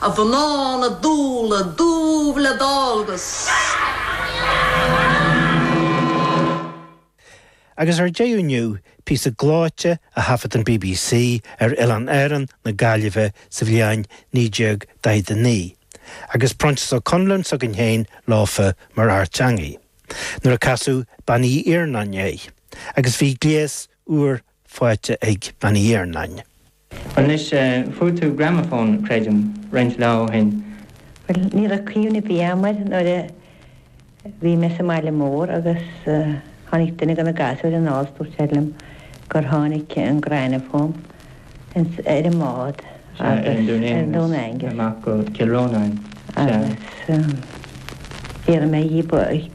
A mhná na dúile dúbh le dál 'gus. Agus ar deireadh inniu, píosa gleoite a thaifead an bbc ar Oileán Árann na Gaillimhe sa bhliain 1949, agus Proinsias Ó Conluain s'againn féin leofa mar fhear teangaidh, nuair a casadh Bean Uí Iarnáin air, agus bhí gléas úr fáighte ag Bean Uí Iarnáin. Anois fuair tú gramafón, creidim, roinnt lá ó shin. Bhuel, ní raibh cuimhne ar bith agam air nuair a bhí mé sa mbaile mór agus tháinig duine de na gasúir anall, dúirt sé liom gur tháinig an gramafón ar an mbád agus ar an Dún Aengus Dún Aengus amach go Cill Rónáin. Agus d'iarr mé dhíobh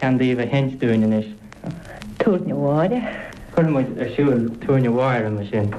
ceann díobh a sheinnt dúinn anois. Túirne Mháire. Chuir muid ar siúl Túirne Mháire ansin.